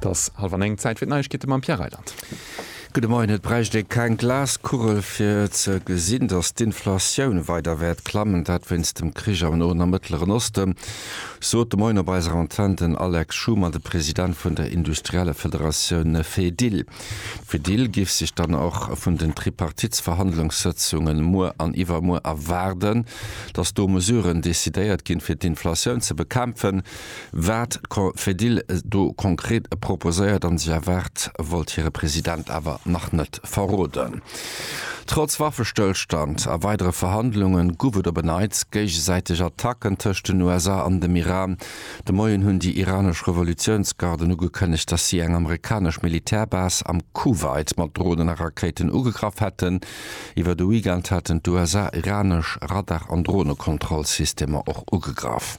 't ass hallef an eng, Zäit fir d'Neiegkeete mam Pierre Reyland. Gudde Moien. Et bräicht ee keng Glaskugel fir ze gesinn, datt d'Inflatioun weider wäert klammen, dat wéinst dem Krich am Noen a Mëttleren Oste, sot de Moien op eiser Antenn den Alex Schumann, de President vun der Industriellefederatioun Fedil. D'Fedil géif sech dann och vun den Tripartitsverhandlungssëtzunge muer an iwwermuer erwaarden, datt do Mesuren decidéiert ginn, fir d'Inflatioun ze bekämpfen. Wat d'Confedil do konkret proposéiert an sech erwaart, wollt hire President awer nach net verroden. Trotz Waffestëllstand a weidere Verhandlunge guff et op e Neits géigesäiteg Attacken tëscht den USA an dem Iran. De Moien hunn déi iranesch Revolutiounsgarden ugekënnegt, datt si eng amerikanesch Militärbase am Kuwait mat Dronen a Rakéiten ugegraff hätten. Iwwer de Weekend haten d'USA iranesch Radar an Dronekontrollsystemer och ugegraff.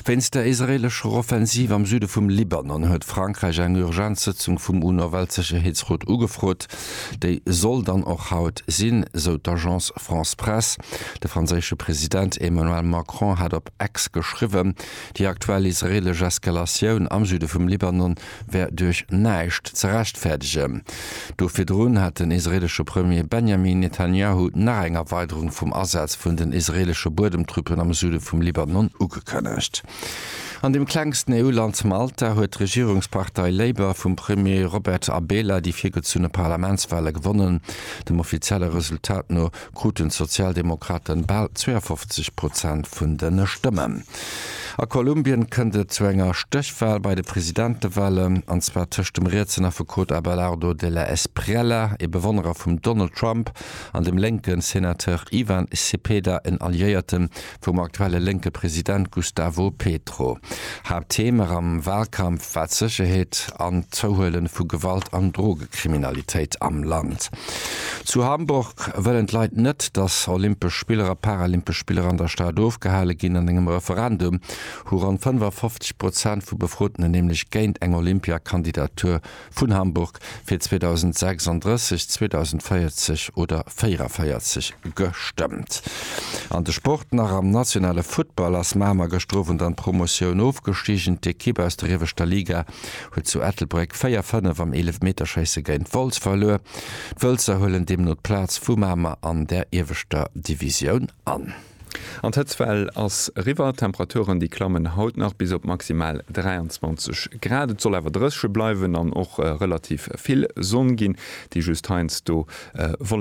Wéinst der israeelescher Offensiv am Süde vum Libanon huet Frankräich eng Urgenzsëtzung vum UNO-Weltsécherheetsrot ugefrot. Déi soll dann och haut sinn, sou d'Agence France-Presse. De franséische President Emmanuel Macron hat op X geschriwwen, déi aktuell israeelesch Eskalatioun am Süde vum Libanon wär duerch näischt ze rechtfäerdegen. Do virdrun hat den israeelesche Premier Benjamin Netanjahu nach eng Erweiderung vum Asaz vun den israeelesche Buedemtruppen am Süde vum Libanon ugekënnegt. An dem klengsten EU-Land Malta huet d'Regierungspartei Labour vum Premier Robert Abela déi virgezunne Parlamentswale gewonnen. Dem offizielle Resultat no kruten d'Sozialdemokraten bal 52 Prozent vun de Stëmmen. A Kolumbien kënnt et zu enger Stéchwal bei de Presidentewalen, an zwar tëscht dem rietsen Affekot Abelardo de la Espriella, ee Bewonnerer vum Donald Trump, an dem lénke Senateur Ivan Cepeda, en Alliéierte vum aktuelle lénke President Gustavo Petro. Haapttheme am Walkampf war d'Sécherheet an d'Zouhuele vu Gewalt an Drogekriminalitéit am Land. Zu Hamburg wëllen d'Leit net, datt olympesch Spiller a paralympesch Spiller an der Stad ofgehale ginn. An engem Referendum hu ronn 55 Prozent vu Befroten nämlech géint eng Olympiakandidatur vun Hamburg fir 2036, 2040 oder 44 gestëmmt. An de Sport nach, Am nationale Futtball ass Mamer gëschter Owend an d'Promotioun ofgestigen. D'Ekipp aus der ieweschter Liga huet zu Ettelbréck 4, 5 am Eelefmeterschéisse géint Wolz verluer. D'Wëlzer huelen deemno d'Plaz vu Mamer an der ieweschter Divisioun an. An d'Hëtzwell ass eriwwer. D'Temperaturen, déi klammen haut nach bis op maximal 23 Grad. Et soll awer drëche bleiwen an och relativ vill Sonn ginn, déi just heiansdo Wolleken.